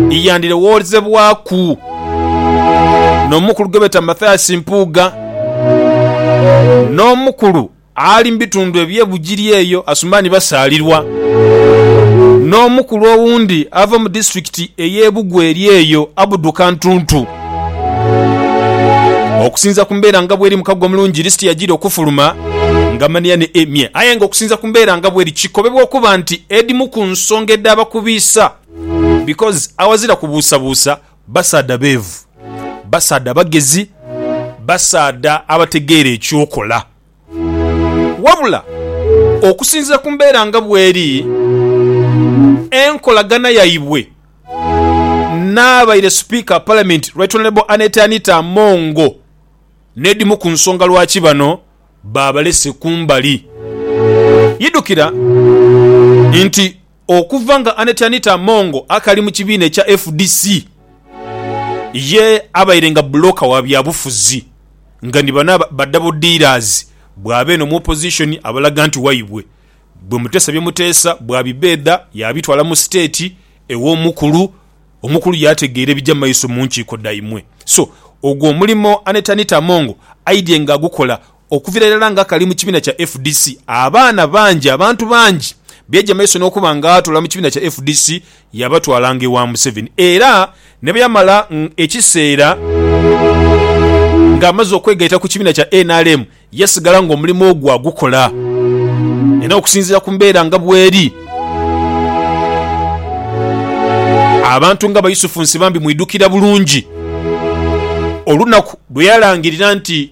iyandirowoozebwaku n'omukulu gwebeeta Mathias Mpuuga n'omukulu ali mu bitundu eby'e Bugiri eyo Asumani Basaalirwa n'omukulu owundi ava mu disitulikiti ey'e Bugwa eri eyo Abdu Kantuntu. Okusinza ku mbeera nga bweri mukago omulungi lisiti yagira okufuluma nga mania ne Emyee aye nga okusinza ku mbeera nga bweri kikobebwa okuba nti edimu ku nsonga edh'abakubiisa Because aghazira kubuusabuusa basaadha beevu, basaadha bagezi, basaadha abategeera eky'okola. Wabula okusinziira ku mbeera nga bweri, enkolagana yaibwe n'abaire Sipiika wa Palamenti Right Honourable Annet Anita Amongo n'edhimu ku nsonga lwaki bano baabalese kumbali. Yidukira nti Okuva nga Annet Anita Among akali mu kibiina ekya fdc, ye abaire nga bbulooka wa byabufuzi nga ni bano ba double dealers bwaba eno mu opposition abalaga nti waibwe bwe Muteesa bye Muteesa bwabibbeedha y'abitwala mu state ew'omukulu omukulu y'ategeera ebija mu maiso mu nkiiko dhaimwe so ogwo omulimo Annet Anita Among aidhye nga agukola Okuvira irala nga kali mu kibiina kya fdc, abaana bangi, abantu bangi beja maiso n'okuba nga atoola mu kibiina kya fdc yabatwalanga ewa Museveni era ne bwe yamala ekiseera ng'amaze okwegaita ku kibiina kya nrm yasigala ng'omulimu ogwo agukola era okusinziira ku mbeera nga bweri abantu nga Bayusufu Nsibambi mwidukira bulungi olunaku lwe yalangirira nti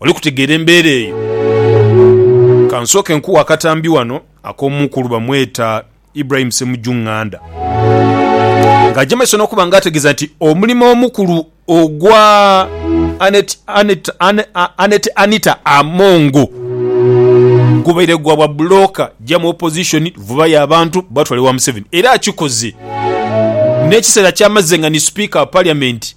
Oli kutegeera embeera eyo? Ka nsooke nkughe akatambi wano ak'omu ku luba mweta Ibrahim Semujju Nganda, ng'aja mu maiso n'okuba nga ategeeza nti omulimo omukulu ogwa Annet Anita Amongo gubaire gwa bwa bulooka ja mu Opposition, vubayo abantu batwale wa Museveni era akikoze n'ekiseera ky'amaze nga ni Sipiika wa Parliament.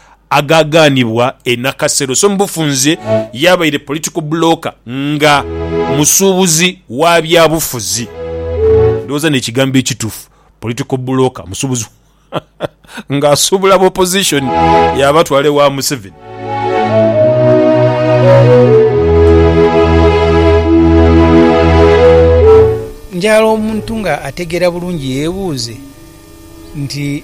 agaagaanibwa e Nakasero so mu bufunze yabaire political blooka nga musuubuzi wa byabufuzi. Ndowooza n'ekigambo ekitufu political blooka musuubuzi ng'asuubula aba opposition yaabatwala ewa Museveni. Njagala omuntu nga ategeera bulungi yeebuuze nti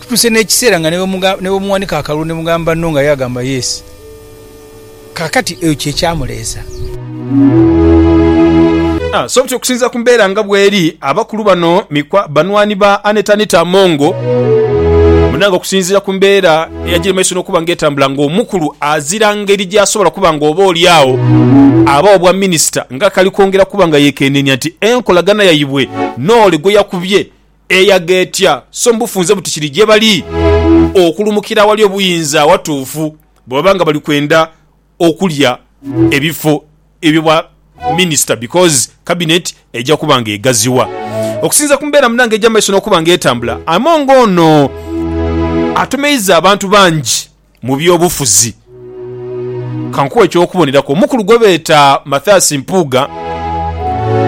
Kutuuse n'ekiseera nga ni bwemuwanika akalulu ni mugamba no nga ye agamba yes. Kaakati eyo kye kyamuleesa. So buti okusinziira ku mbeera nga bweri, abakulu bano banwani ba Annet-Anita Among. Munnange okusinziira ku mbeera eyagiri mu maiso n'okuba nga etambula nga omukulu azira ngeri gy'asobola kuba nga oba oli agho aba wa bwa minisita nga akali kwongera kuba nga yeekenneenya nti enkolagana yaibwe n'ole gwe yakubye Eyagha etya so mu bufunze buti kiri gye bali okulumukira awali obuyinza awatuufu bwe baba nga bali kwenda okulya ebifo ebyo bwa minisita because Cabinet eja kuba nga egaziwa. Okusinziira ku mbeera munange egya maiso n'okuba nga etambula, Among ono atomeiza abantu bangi. mu by'obufuzi. Ka nkuwe eky'okuboneraku, omukulu gwe beeta Mathias Mpuuga,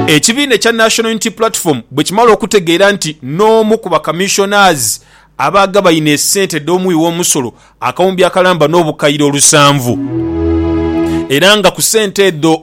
ekibiina ekya National Unity Platform bwe kimala okutegeera nti n'omu ku ba Commissioners abaagabaine esente dh'omuwi w'omusolo akawumbi akalamba n'obukaire olusanvu era nga ku sente edho